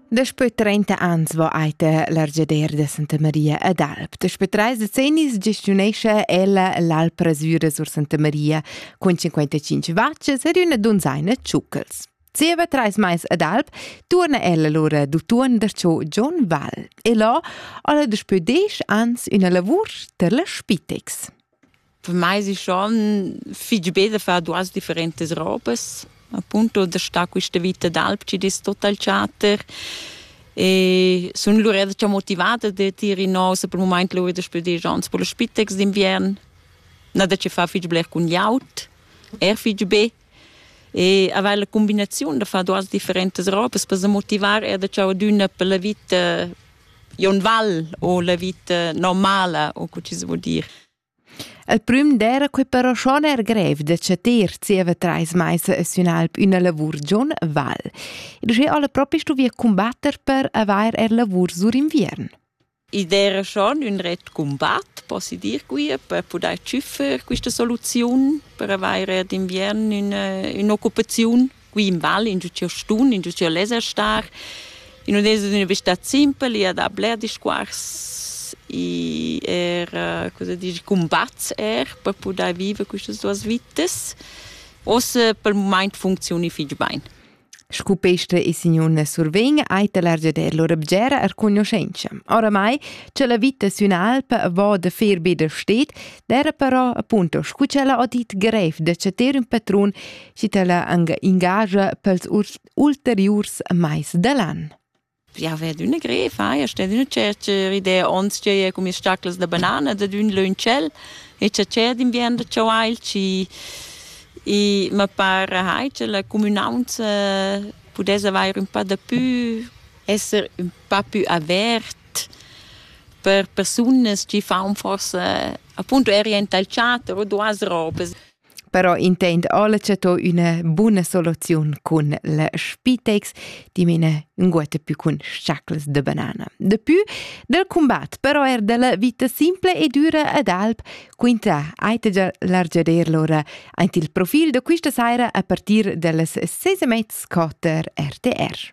Daspö trenta ans va eita l'argiader da Santa Maria ad Alp. Daspö trais decennis gestiunescha ella l'Alp Rasüra sur Santa Maria cun 55 vacces ed üna dunzaina tschucchels. Zieva trais mais ad Alp turna ella lura d'utuon da cho John Val e là ha la daspö desch ans üna lavur tar la Spitex. Per mei si schon fich be da far duas differentas robas. Appunto da star quista vita d'alp chi'd es total chatter. E sun lura da motivada da tir inò se pel mumaint lura da spüdir ans pro las spitex d'inviern. Na da che far fich bler cun gl'aut, eir fich be. e aveva la combinazione da fare duas differentes robes per se motivar er da ciò d'una per la vita Ionval o la vita normala o co ci si vuol dire. Il prüm d'era quei però schon er grev da chatir zieva treis mais sün alp üna lavur giun Val. Ed sche alle propi stuvia combatter per avair er lavur sur inviern. Id era schon ün ret cumbat, possi dir quia, per pudair tschüffer quista soluziun per avair d'inviern üna ün'occupaziun qui in val, ingio ch'eu stun, ingio ch'eu less star. In ün es üna vista simpel, i ha da bler discuors, i er cosa dir cumbats er per pudair viver quistas duos vitas. Uossa pel mumaint funcziuni fich bain. Scu pesta e signun survegn ei l'argiader lur bgera er cognoscenza. Oramai, che la vita sün'alpa va da fer be da stet, era però appunto scu che la odit grev da chater ün patrun, chi tala anga ingagia pels ulteriurs mais da l'an. Ja vet üna grefa, ja stet üna tschercher idea ons tgei cu mis staclas da banana dad ün lö ün tschel e tschatschè d'inviern da chauailch e e ma par hai cha la cumünaunza pudess avair ün pa dapü, esser ün pa pü avert per persunas chi faun forsa appunto eri aint al teater o duas ropas. però intend Alece to üna buna soluziun cun le spitex, dimene nguette più cun sciacles de banana. De più del combat, però er della vita simple e dura ad alp, quinta aitegia largeder lora aint il profil de quista saira a partir dellas ses e mezz quater RTR.